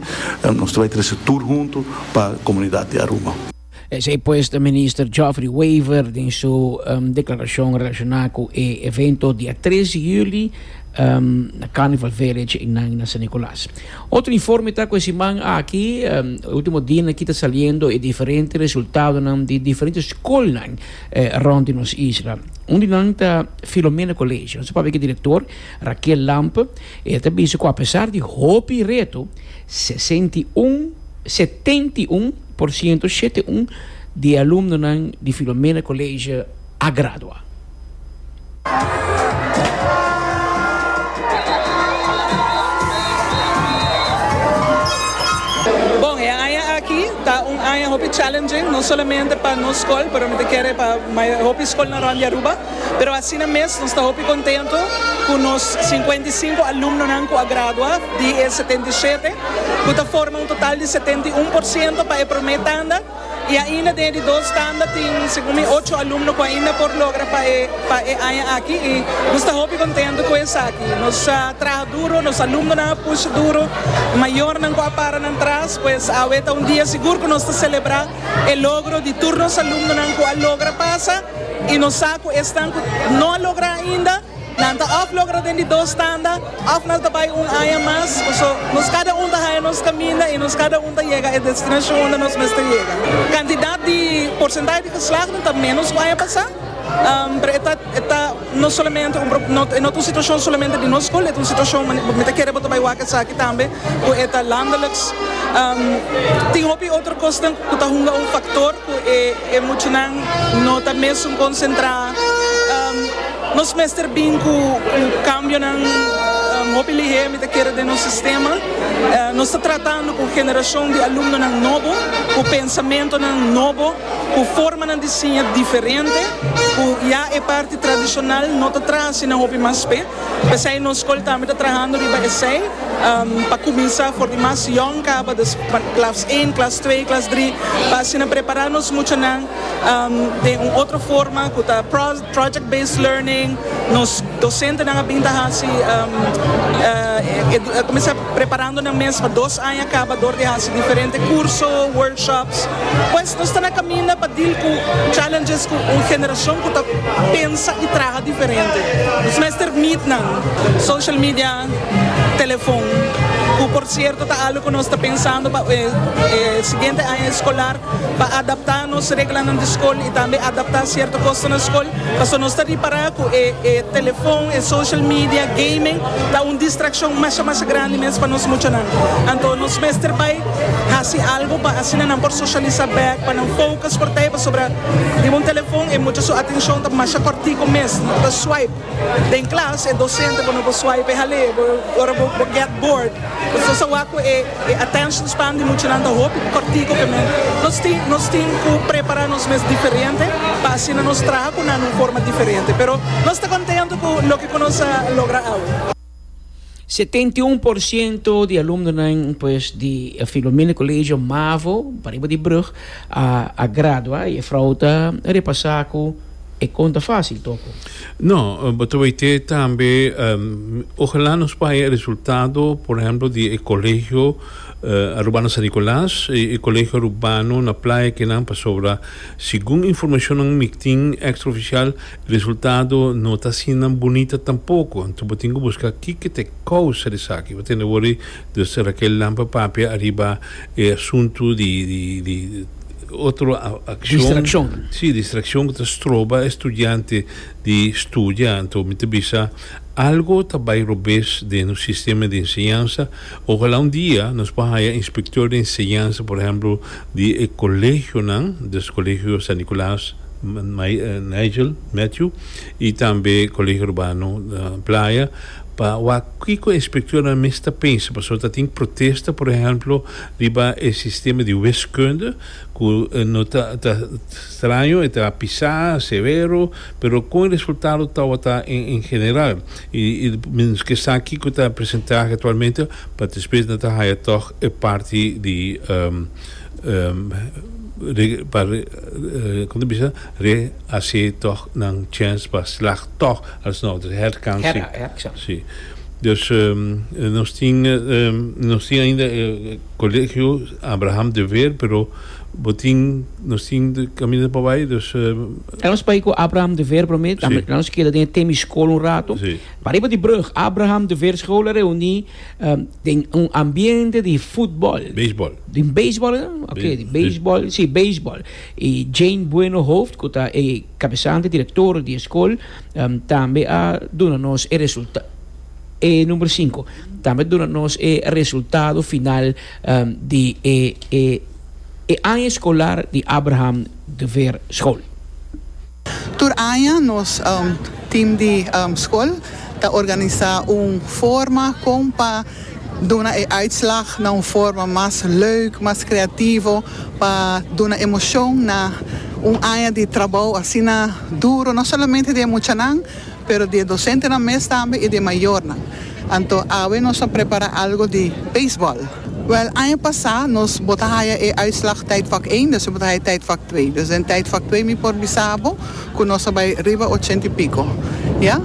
Nos ta bai trese tur huntu pa komunidat di Aruba. Esei pues ta Minister Geoffrey Wever den su deklarashon relashoná ku e evento dia tres di juli na Carnival Village einan na San Nicolas. Otro informe ta ku e siman aki, e último dianan aki ta saliendo e diferente resultadonan di diferente skolnan. E rond di nos isla. Un di nan ta Filomena Colegio. Nos a papia ku e direktor, Raquel Lamp, i el ta bisa ku apesar di hopi reto, sesenta i un, setenta i un, por siento, shete un, di e alumnonan di Filomena Colegio a gradua. Bon, e aña aki ta un aña hopi challenging, no solamente pa nos skol, pero mi ta kere pa hopi skolnan rònt di Aruba. Pero asina mes nos ta hopi kontentu ku nos sinkuenta i sinku alumnonan ku a gradua di e setenta i shete, ku ta forma un total di setenta i un por siento pa e promé tanda. Y ainda den e di dos tanda tin segun mi ocho alumno cu ainda por logra pa e pa e aña aki y nos ta hopi contento cu esaki. Nos a traha duro, nos alumnonan a pushi duro, mayornan cu a para nan tras, pues awe ta un dia sigur cu nos ta celebra e logro di tur nos alumnonan cu a logra pasa y nos sa cu esnan cu no a logra ainda, Nan ta òf logra den di dos tanda, òf nan ta bai un aña mas. Paso, nos kada un ta haña nos kaminda i nos kada un ta yega e destinashon unda nos mester yega. Kantidat di porsentahe di geslagden ta ménos ku aña pasá, pero e ta e ta no solamente un pro, e no ta un situashon solamente di nos skol, e ta un situashon, mi mi ta kere bo ta bai wak esaki tambe, ku e ta landeliks. Tin hopi otro kosnan ku ta hunga un faktor ku e. E muchanan no ta mesun konsentrá. Nos mester bin ku kambionan. Hopi lihé mi ta kere den nos sistema. Nos ta tratando ku generashon di alumnonan nobo, ku pensamentonan nobo, ku formanan di siña diferente, ku ya e parti tradishonal no ta trahá asina hopi mas p'e. P'esei nos skol tambe ta trahando riba esei pa kuminsá for di mas yòn kaba di klas én, klas twee, klas dri pa asina prepará nos muchanan den un otro forma ku ta project based learning, nos dosentenan a bin ta hasi. Preparando nan mes pa dos aña kaba dor di hasi diferente kurso, workshops. Pues nos ta na kaminda pa dil ku challenges ku un generashon ku ta pensa i traha diferente. Nos mester mit nan. Social media, telefon, ku por sierto ta algu ku nos ta pensando pa e siguiente aña eskolar. pa adaptá nos reglanan di skol i tambe adaptá sierto kosnan na skol. Pasobra nos ta ripará ku e telefòn, e social media, gaming ta un distrakshon masha masha grandi mes pa nos muchanan. Anto nos mester bai hasi algu pa asina nan por soshalisá bèk, pa nan fokus por ta ei, pasobra riba un telefòn e mucha su atenshon ta masha kòrtiku mes, ta swipe. Den klas e dosente bo no por swipe e hal'é, bo ora bo bo get bored, nos ta sawa ku e e attention span di muchanan ta hopi kòrtiku kemen. Nos tin nos tin ku prepara nos mes diferente pa asina nos traha ku nan un forma diferente. Pero nos ta kontentu ku loke ku nos a logra awe. Setenta i un por siento di alumnonan pues di e Filomena Colegio Mavo pariba di Brug a a gradua y e frou ta repasa cu e conta facil toco. No, bo ta bay te tambe ojala nos bay e resultado por ehemplo di e Colegio Arubano San Nicolas y e Colegio Arubano na Playa Kenan pasobra segun informacionnan mi tin extra oficial Resultado no ta asinan bunita tampoko, anto bo tin ku buska kiko ta e kousa di esaki. Bo tende wòrdu dus Raquel Lampa papia ariba e asuntu di di otro akshon. Distrakshon. Sí, distrakshon ku ta stroba e studiante di studia. Anto mi ta bisa algo ta bai robes den nos sistema di enseñansa. Ojalá un dia nos por haya inspektor di enseñansa, por ehèmpel di e kolegionan, dus kolegio San Nikolaas. Nigel, Matthew, y tambe Colegio Urbano Playa pa wak kico e inspectornan mes ta pensa pasobra ta tin protesta por ehemplo riba e sistema di wiskunde cu no ta ta straño e ta pisa severo pero con e resultado tawata en general y y menos ke sa kico ta presentahe actualmente pa despues nan ta haya tog e parti di. Kon ta bisa? Re hasi tòg nan chèns pa slag tòg alsnog. Dus herkansing. Herkansing. Sí. Dus nos tin nos tin ainda e Colegio Abraham de Veer pero bo tin nos tin kaminda pa bai dus Kan nos bai ku Abraham de Veer promé? Lanos keda den e Temi School un rato. Sí. Pariba di brug Abraham de Veer School a reuní. Den un ambiente di futbol. Beisbol. Di beisbol, no? Ok, Be- di beisbol, si, beisbol. I Jane Bueno Hooft, ku ta e kabesante, direktor di e skol, em, tambe a duna nos e resulta, e numero sinku, tambe a duna nos e resultado final em, di e, e, e aña eskolar di Abraham de Veer School. Tur aña nos tim di skol ta organisá un forma kon pa duna e uitslag na un forma mas leuk, mas kreativo, pa duna emoshon na un aña di trabou asina duro, no solamente di e muchanan. pero di e dosentenan mes tambe i di e mayornan. Anto awe nos a prepara algo di beisbòl. Wèl, aña pasá nos bo ta haya e uitslag Tijdvak één, despues bo ta haya Tijdvak twee. Dus den Tijdvak twee mi por bisa bo ku nos a bai riba ochenta i piko, ya.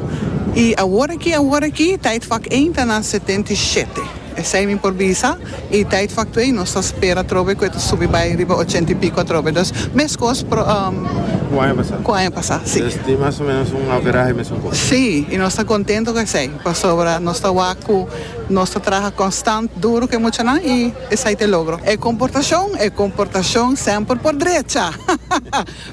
I awor aki, awor aki, Tijdvak één ta na setenta i shete. Esei mi por bisa, i teit factu ei nos ta spera atrobe cu e ta subi bai riba ochenta y pico atrobe. Dus, mescos cu aña pasa. Cu aña pasa, si. Dus tin mas o menos un averahe mesun cosa. Si, i nos ta contento cu esei, pasobra nos ta wak cu nos ta traha constant duro cu e muchanan i esei ta e logro. E comportacion, e comportacion semper por drecha.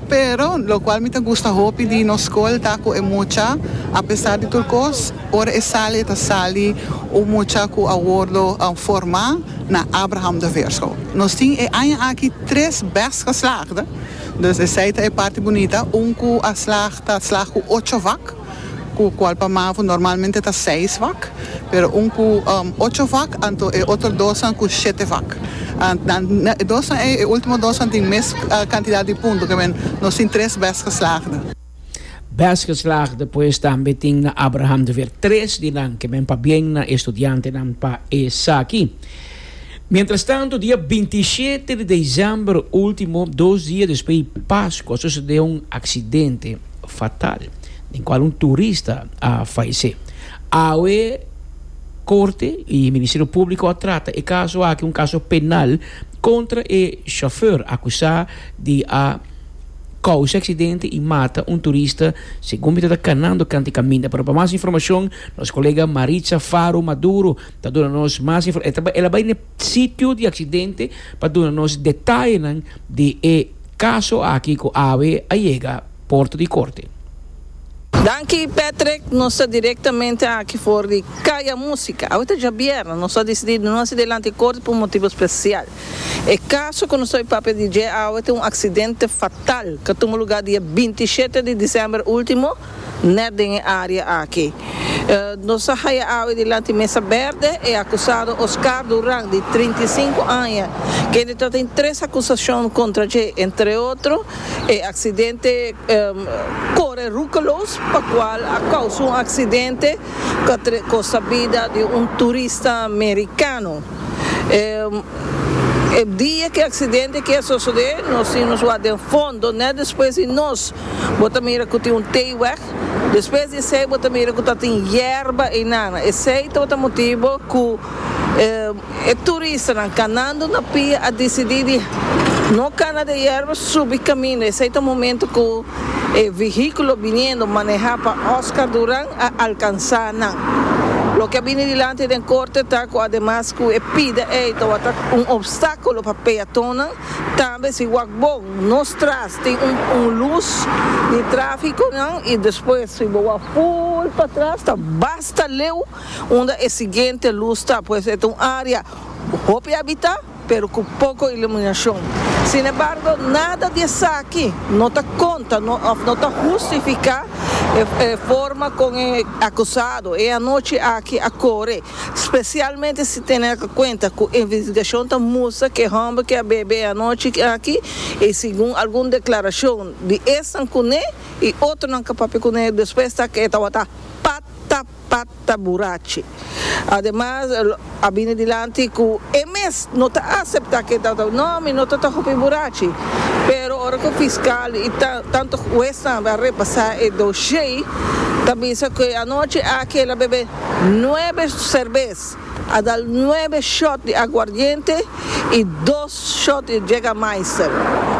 Pero, lokual mi ta gusta hopi di nos skol ta ku e mucha, apesar di tur kos, ora e sali e ta sali un mucha ku a wordo formá na Abraham de Veer School. Nos tin e aña aki tres bèst geslaagden, dus esei ta e parti bunita, un ku a slaag ta slaag ku ocho vak. ku kual pa Mavo normalmente ta seis vak, pero un ku ocho vak anto e otro dosnan ku shete vak. E dosnan ei, e ultimo dosnan tin mes kantidat di punto, ke men nos tin tres bèst geslaagde. Bèst geslaagde pues tambe tin na Abraham de Veer. Tres di nan ke men pabien na e studiantenan pa esaki. Mientrastantu, dia binti i shete di desèmber último, dos dia despues di Paskua, sosodé un aksidente fatal den kual un turista a falesé. Awe Korte i Ministerio Públiko a trata e kaso aki un kaso penal kontra e shofèr akusá di a kousa aksidente i mata un turista segun mi ta kanando kant e kaminda. Pero pa mas informashon nos kolega Maritza Faro Maduro Ta duna nos mas informashon. El a bai na e sitio di aksidente pa duna nos detayenan di e kaso aki ku awe a yega porta di korte. Danki Patrick, nos ta direktamente aki for di Kaya Musika. Awe ta djabièrnè, nos a disidí di no hasi delanti korte pa un motibu spesial. E kaso ku nos ta bai papia di dje awe ta un aksidente fatal, ta tuma lugá dia binti i shete di disember último, Net den e área aki. Nos a haya awe dilanti Mesa Berde e akusado Oscar Duran di trinta i sinku aña, kende ta tin tres akusashon kontra dje, entre otro e aksidente kore rukeloos pa kual a kousa un aksidente ku a kosta bida di un turista merikano. E dia ki aksidente aki a sosodé, nos tin nos wak den fondo, nèt despues di nos, bo ta mira ku tin un tei wèk. Despues di esei bo ta mira ku ta tin yerba einan. Esei tabata motibu ku e turistanan kanandu na pia a disidí di no kana den yerba, subi kaminda. Esei ta momentu ku e vehíkulo biniendo manehá pa Oscar Duran. a alkansá nan. Loke a bini dilanti den korte ta ku ademas ku e pida ei tabata un opstákulo pa peatonnan, tambe si wak bo nos tras tin un lus di tráfikonan i despues si bo wak full patras ta basta leu unda e siguiente lus ta, pues e ta un área hopi habitá. Pero cu poco iluminacion. Sin embargo, nada di esaki no ta conta of no ta hustifica e forma con e acusado e anochi aki a core, specialmente si tene na cuenta cu investigacion ta mustra cu e homber ke a bebe e anochi aki y segun algun declaracion di esnan cune y otronan ke papia cune despues ta ke e tawata pata Pat ta burachi. Ademas a bini dilanti cu e mes no ta acepta cu e ta ta no mi no ta ta hopi burachi. Pero ora cu fiscal y tanto huesnan a repasa e doshier ta bisa cu e anochi aki el a bebe nuebe cervez, a dal nuebe shot di aguardiente y dos shot di Jägermeister.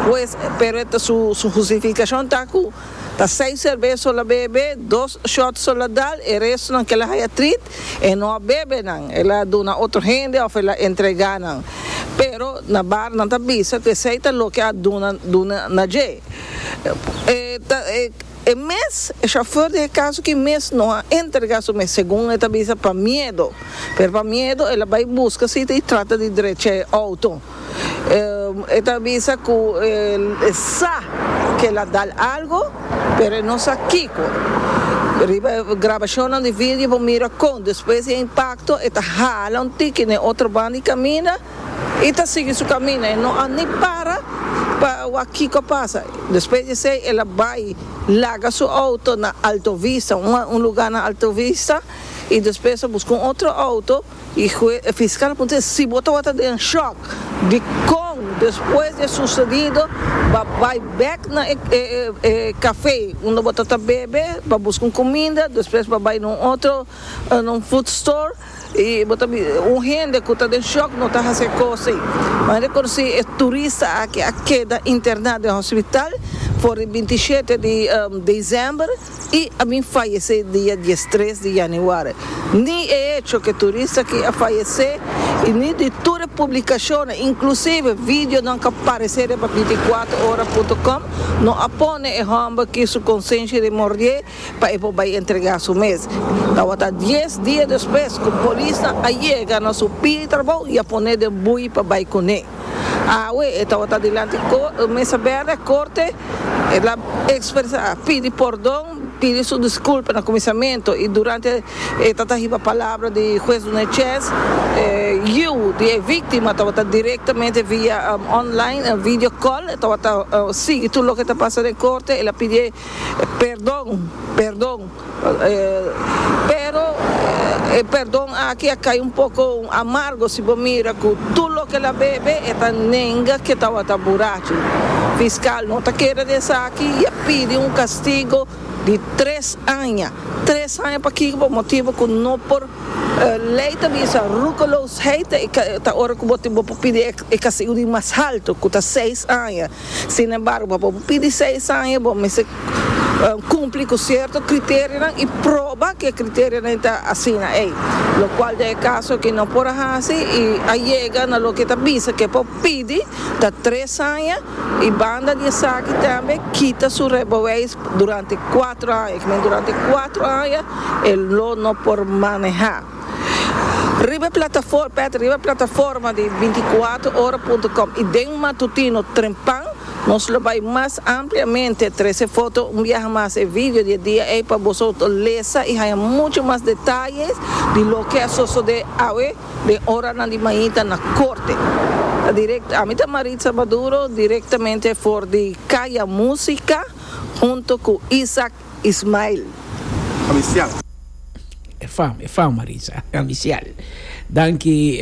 Hues pero su justificacion ta cu. Ta seis cerveso la bebe, dos shot so la dal, e resto nan kela haya treat, e no a bebe nan, el a duna otro hende of el a entrega nan. Pero na bar nan ta bisa cu esey ta loke a duna duna na dje. E ta e e mes, e chauffeur di Hekazuki mes no a entrega su mes segun e ta bisa pa miedo. Pero pa miedo el a bay busca siti y trata di drecha e auto. E ta bisa ku e sa ku el a dal algu, pero e no sa kiko. Riba e grabashonnan di video bo mira kon despues di e impakto e ta hala un tiki na e otro banda i kaminda i ta sigui su kaminda. E no a ni para pa wak kiko a pasa. Despues di esei el a bai laga su outo na Alto Vista, un lugar na Alto Vista, i despues a buska un otro outo E hue e fiskal a puntr'é, Si bo tabata den shòk di kon despues di e susedido bo a bai bèk na e kafé unda bo tabata bebe pa buska un kuminda, despues bo a bai na un otro, na un food store, i bo ta bisa, un hende ku ta den shòk no ta hasi e kos ei. Bo a rekonosé e turista aki a keda interná den hospital for di binti i shete di desèmber. y a bin fayece dia dies tres di Januari. Ni e hecho ke turista aki a fayece y ni di tur e publicacionnan, inclusive videonan ka parece riba veinticuatrohora.com, no a pone e homber aki su conciencia di mordié pa e por bay entrega su mes. Tawata dies dia despues ku polisnan a yega na su pia di trabou y a pone den bui pa bay kuné. Awe e tabata dilanti ku e Mesa Bèrdè e Korte. El a ekspresá, pidi pordon, pidi su diskulpa na kuminsamentu i durante e tabata hiba palabra di Hues Dunechez, e yiu di e víktima tabata direktamente via online, un video call, e tabata sigui tur loke ta pasa den Korte. El a pidi pèrdon, pèrdon. Pero e perdon aki a kai un poko amargo si bo mira ku tur loke el a bebe e ta nenga ke tawata burachu. Fiskal no ta kere di esaki i a pidi un kastigo di tres aña. Tres aña pakiko? Por motibu ku no por lei ta bisa roekeloosheid ta ora ku bo por pidi e kastigo di mas haltu ku ta seis aña. Sin embargo, pa bo pidi seis aña bo mester cumpli cu cierto criterionan y proba cu e criterionan ta asina ey, locual den e caso aki no por a haci y a yega na loke ta bisa cu e por pidi ta tres aña y banda di esaki tambe kita su rijbeweis durante cuatro aña, que durante cuatro aña e lo no por maneha. Riba e plataforma, pèt, riba e plataforma di binticuatro ora punto com i den matutino trempan, nos lo bai mas ampliamente trece foto un biaha mas e video di e dia ei pa boso lesa i haña muchu mas detaye di loke a sosode awe den oranan di mainta na Corte. Ta direct, Ami ta Maritza Maduro, directamente for di Kaya Musica hunto cu Isaac. Ismael. Amicial. E fam, e fam Maritza. Amicial. Danki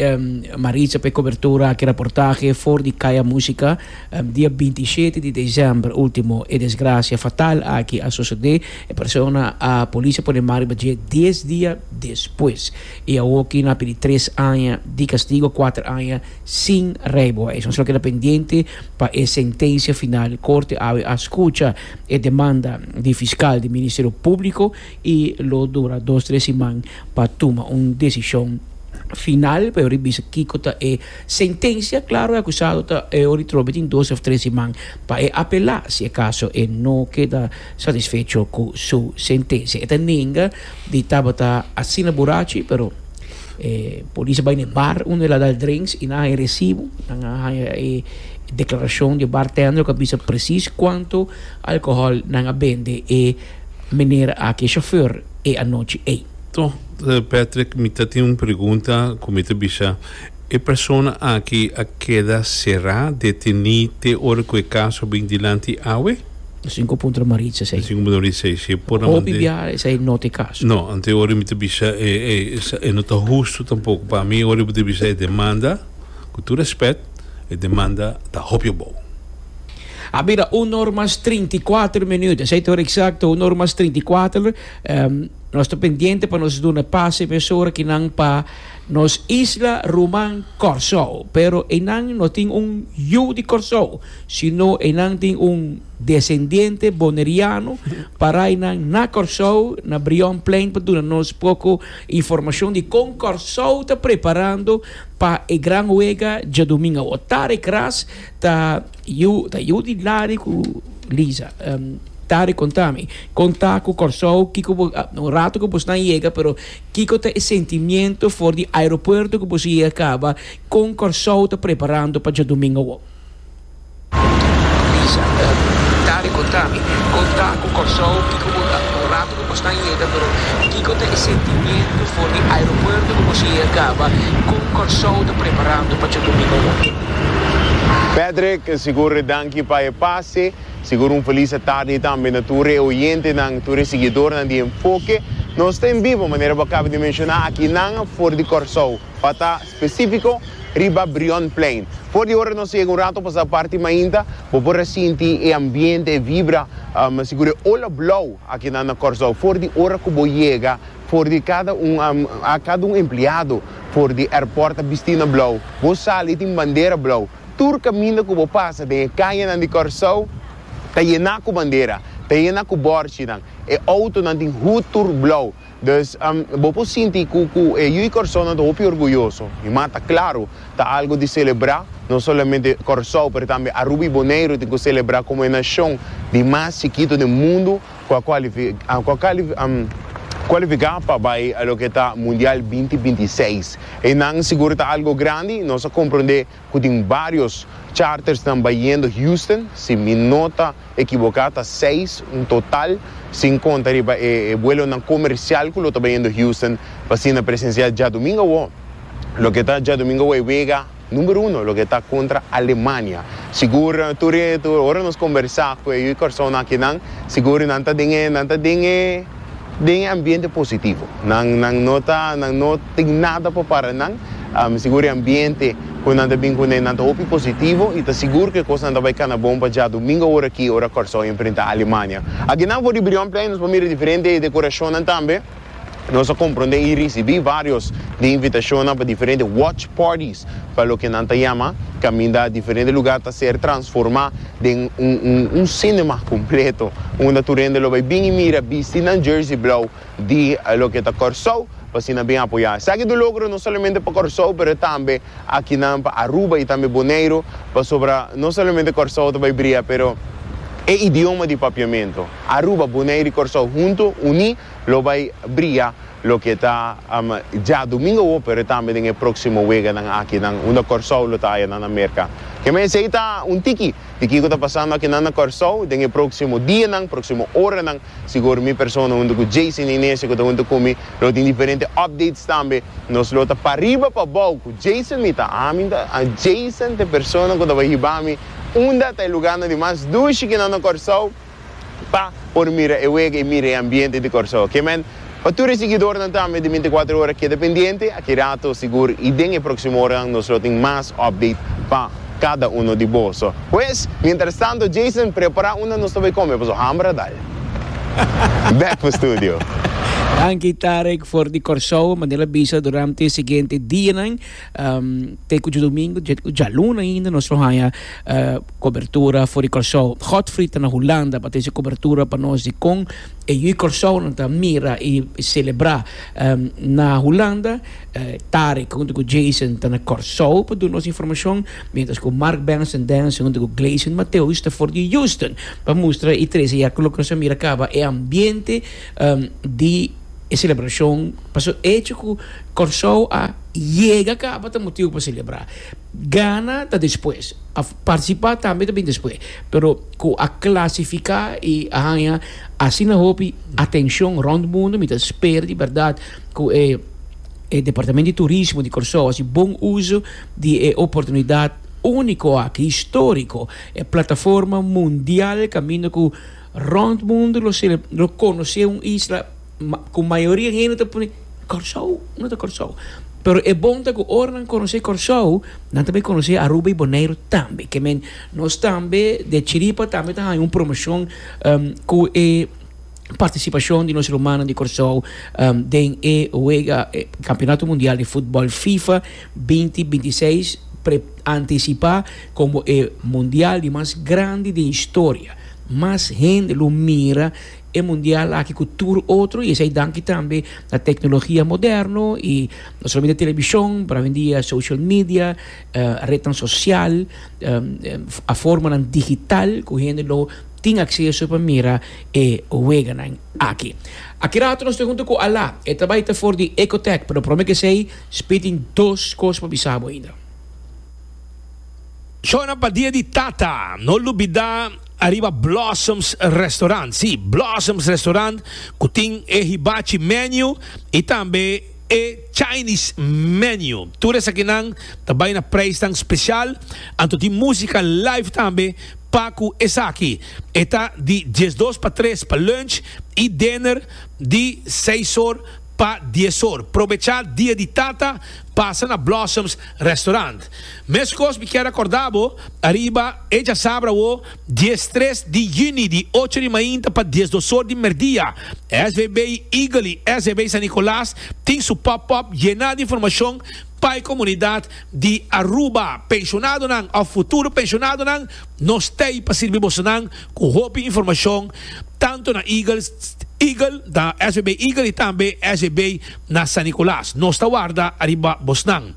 Maritza pa e cobertura aki raportahe for di Kaya Musica. Dia binti i shete di december ultimo e desgracia fatal aki a sosode. E persona a policia pone mar riba dje dies dia despues. I awoki na pidi tres aña di castigo, kuater aña sin rijbewijs. Nos lo keda pendiente pa e sentencia final. Corte awe a scucha. E demanda di fiskal di Ministerio Públiko i lo dura dos tres siman pa tuma un desishon final pa e oir bisa kiko ta e sentensia. Klaro e akusado ta e oir trobe tin dos òf tres siman pa e apelá si e kaso e no keda satisfecho ku su sentensia. E ta nenga Di tabata asina burachi pero e polis a bai na e bar unda el a dal drinks y nan haña e recibo, nan a haña e declaracion di e bartender cu a bisa precies cuanto alcohol nan a bende e meneer aki e chauffeur e anochi ey. Toh Patrick mi ta tin un pregunta cu mi ta bisa e persona aki a keda cera, deteni te ora cu e caso a bin dilanti awe? E sinku puntra Maritza esei. E sinku puntra Maritza esei, si e por a manda e. Hopi bia esei no ta e kaso. No, anto ora mi ta bisa e, e, e no ta hustu tampoko. Pa mi ora bo ta bisa e demanda, ku tur rèspèt, e demanda ta hopi abou. A bira un or mas trinta i kuater minüt, esei ta ora eksakto, un or mas trinta i kuater. Nos ta pendiente pa nos duna pas e mesora ki nan pa nos isla ruman Kòrsou. Pero einan no tin un yu di Kòrsou. Si no enan tin un desendiente boneriano parai nan na Corsou na Brion Plain pa duna nos poco informacion di con Corsou ta preparando pa e gran huega djadomingo awor. Tarek Ras ta yu ta yu di Larry cu Lisa. Tarek conta mi con ta cu Corsou kico bo un rato cu boso nan yega pero kico ta e sentimiento for di aeropuerto cu boso yega caba con Corsou ta preparando pa djadomingo awor. Lisa, Dari kontami, kon ta ku Kòrsou? Kiko bo ta un ratu ku bosta yega, pero kiko ta e sentimiento for di aeropuerto ku boso yega kaba? Kon Kòrsou ta preparando pa Tjodomingou hopi? Patrick, Sigur, danki pa e pase. Sigur un felisa tardi tambe na tur e oyentenan, tur e siguidornan di Enfoke. Nos ta en bibo, manera bo a kaba di menshoná aki, nan for di Kòrsou. pa ta spesífiko, riba Brionplein. For di ora nos yega un rato pasá parti mainta, bo por a sinti e ambiente, e vibra, mi sigur e ola blou a keda na Kòrsou for di ora ku bo yega. For di kada un, kada un empleado for di airport a bisti na blou. Bo sali tin bandera blou. Tur kaminda ku bo pasa den e kayenan di Kòrsou ta yená ku bandera, ta yená ku bòrchinan. E outonan tin hut tur blou. Dus, bo por sinti cu cu e yu y Corsounan ta hopi orguyoso. Mi m'a ta claro, ta algo di celebra, no solamente Corsou pero tambe Aruba y Boneiru tin cu celebra como e nacion di mas chikito den mundo cu a cu a cualifica pa bay a loke ta Mundial binti binti seis. Eynan sigur ta algo grandi, nos a comprende cu tin varios chartersnan bayendo Houston, si mi no ta ekiboká ta seis un total, sin conta riba e buelonan comercial cu lo ta bayendo Houston pa asina presenciá djadumingo awor loke ta djadumingo awor e wega number uno loke ta contra Alemania. Sigur tur e tur ora nos combersá cu e yu Corsounan akinan sigur nan ta den e nan ta den e. Den e ambiente positivo. Nan nan no ta nan no tin nada pa para nan. Mi sigur e ambiente ku nan ta bin kuné nan ta hopi positivo i ta sigur ku e kosnan ta bai kana bon pa djadumingu ora aki ora Kòrsou enfrentá Alemania. Aki nan for di Brion Plein nos por mira diferente dekorashonnan tambe. Nos a komprondé i risibí vários di invitashonnan pa diferente watch parties pa loke nan ta yama kaminda diferente lugá ta ser transformá. den un cinema completo unda tur hende lo bay bin y mira bisti nan jersey blauw di loke ta Corsou pa así nan bin apoya esaki ta un logro no solamente pa Corsou pero tambe akinan pa Aruba y tambe Boneiru pasobra no solamente Corsou ta bay bria pero e idioma di papiamento Aruba Boneiru y Corsou hunto uní lo bay bria Loke ta dja domingo hopi ora tambe den e proksimo weganan akinan unda Kòrsou lo ta haya nan na Merka. Ke men esei ta un tiki di kiko ta pasando akinan na Kòrsou den e proksimo dianan, proksimo oranan. Sigur mi persona huntu ku Jason i Nesia ku ta huntu ku mi lo tin diferente updates tambe. Nos lo ta pariba pa bou ku Jason mi ta. Ami ta Jason ta e persona ku tabata hiba mi unda ta e luganan di mas dushi kinan na Kòrsou. Pa por mira e wega y mira e ambiente di Corsou. Ke men, pa tur e siguidornan tambe di binticuater ora keda pendiente, aki rato sigur y den e proximo oranan nos lo tin mas update pa cada uno di boso. Pues, mientras tanto Jason prepara unda nos ta bay come paso hamber a dal. Back pa studio. Danki Tarek for di Corsou, manera bisa durante e siguiente dianan Te ku djadomingu djaluna ainda nos lo haña kobertura for di Kòrsou. Godfrey ta na Hulanda pa trese kobertura pa nos di kon e yu i Kòrsounan ta mira i selebrá. Na Hulanda, Tarek huntu ku Jason ta na Kòrsou pa duna nos informashon, miéntras ku Mark Benson Dance huntu ku Gleison Mateus ta for di Houston pa mustra i trese ya loke nos a mira kaba e ambiente di E celebracion, pasobra e hecho cu Corsou a yega caba ta motibo pa celebra. Gana ta despues, a participa tambe ta bin despues, pero cu a clasifica y a haya asina hopi atencion rond mundo, mi ta spera di berdad cu e e departamento di turismo di Corsou haci bon uzo di e oportunidad unico aki, historico, e plataforma mundial caminda cu. Rond mundu lo celeb lo conoce un isla cu mayoria di hende ta pone Corsou no ta Corsou pero e bon ta cu ora nan conoce Corsou nan ta bay conoce Aruba y Bonaire tambe ke men nos tambe de chiripa tambe ta haya un promocion cu e participacion di nos rumannan di Corsou den e wega campeonato mundial di footbal fifa binti binti i seis pre anticipa como e mundial di mas grandi den historia. Mas hende lo mira e mundial aki ku tur otro, i esei danki tambe na teknologia moderno i no solamente televishon, pero awendia social media, retnan sosial, formanan digital ku hende lo tin akseso pa mira e weganan aki. Aki rato nos ta hunta ku Ala, e ta bai ta for di Ecotech, pero prome kesei Speed tin dos kos pa bisa bo ainda. Shona pa dia di tata. No lubida ariba Blossoms Restaurant. Sí, Blossoms Restaurant cu tin e Hibachi Menu y tambe e Chinese Menu. Tur esakinan ta bay na prijsnan special. Anto tin musica live tambe pa cu esaki. E ta di diesdos pa tres pa lunch y dinner di seisor pa diesor. Probecha dia di tata Pasa na Blossoms Restaurant. Meskos mi kier akorda bo ariba e djasabra awo dies tres di yüni di ocho di mainta pa dies dos or di merdia. SVB Eagle i SVB San Nicolas tin su pop up yená di informashon pa e komunidat di Aruba. Penshonado nan of futuro penshonado nan nos t'ei pa sirbi boso nan. ku hopi informashon tantu na Eagles Eagle ta SBB Eagle i tambe SBB na San Nicolas. Nos ta warda ariba bosnan.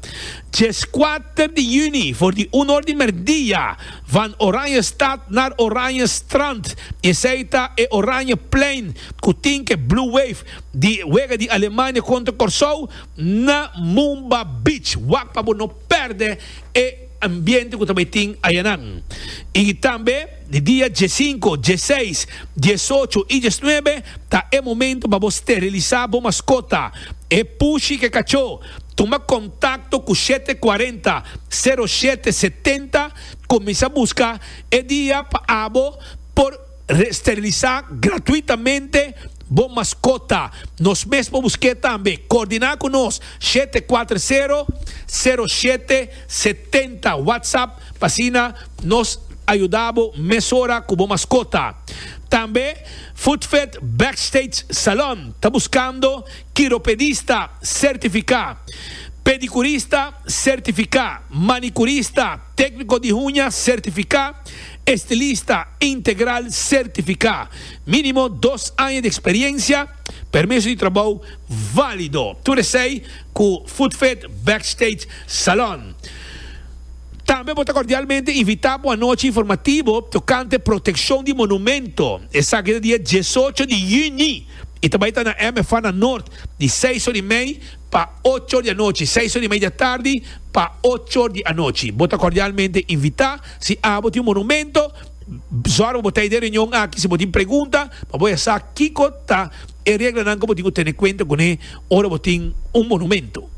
Djes kuater di yüni for di un or di merdia van Oranjestad naar Oranjestrand. Esei ta e Oranjeplein ku tin ke Blue Wave di wega di Alemania kontra Kòrsou na Mumba Beach. Wak pa bo no. pèrdè e ambiente ku ta bai tin ayanan. I tambe di dia diesinko, dieseis, diesocho i diesnuebe ta e momento pa bo sterilisá bo maskota, e pushi ku e kachó. Tuma kontakto ku shete kuarenta, sero shete setenta, kuminsá buska e dia pa abo por. Steriliza gratuitamente bo maskota. Nos mes por busk'é tambe. Koordiná ku nos, shete kuater sero, sero shete setenta, WhatsApp, pa asina nos a yuda bo mesora ku bo maskota. Tambe Foodfed Backstage Salon ta buskando kiropedista sertifiká, pedikurista sertifiká, manikurista, tékniko di huña sertifiká, Estilista integral sertifiká, mínimo dos aña di eksperiencia, permiso di trabou válido. Tur esei ku Foodfit Backstage Salon. Tambe bo ta kordialmente invitá pa un anochi informativo tokante protekshon di monumento. Esaki ta dia diesocho di yüni i ta bai ta na MFA na Noord di seis or i mei pa ocho or di anochi, seis or i mei di atardi pa ocho or di anochi. Bo ta kordialmente invitá. Si abo tin monumento, zòrg pa bo ta e reunion aki. Si bo tin pregunta, pa bo e sa kiko ta e reglanan ku bo tin ku tene kuenta kuné ora bo tin un monumento.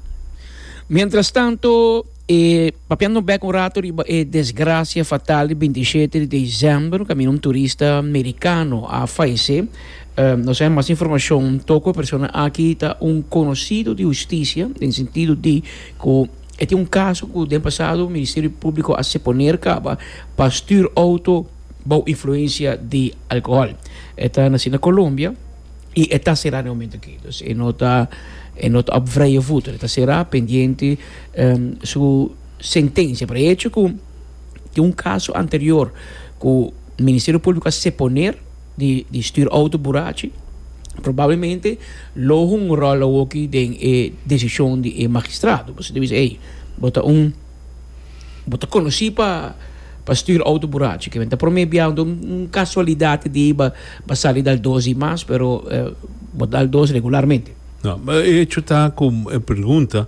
Mientrastantu, e papia nos bèk un ratu riba e desgrasia fatal di binti i shete di desèmber, kaminda un turista merikano a falesé. Nos a haña mas informashon toko e persona aki ta un konosido di hustisia, den sentido di ku, E tin un kaso ku den pasado Ministerio Públiko a seponer kaba pa stür outo bou influensia di alkohòl. E ta nasi na Kolombia i e ta será na e momento akí. Dus e no ta e no ta op vrije voet. E ta será pendiente su sentensia por e hecho ku tin un kaso anterior ku Ministerio Públiko a seponer. Di stuur auto burachi. Probablemente lo hunga un rol awoki den e desishon di e magistrado. Pasobra ta bisa, ey, bo ta un, bo ta konosí pa, pa stuur auto burachi. Kimen ta promé biaha, un kasualidat di bo a sali dal dos i mas, pero bo dal dos regularmente. E hecho ta ku e pregunta.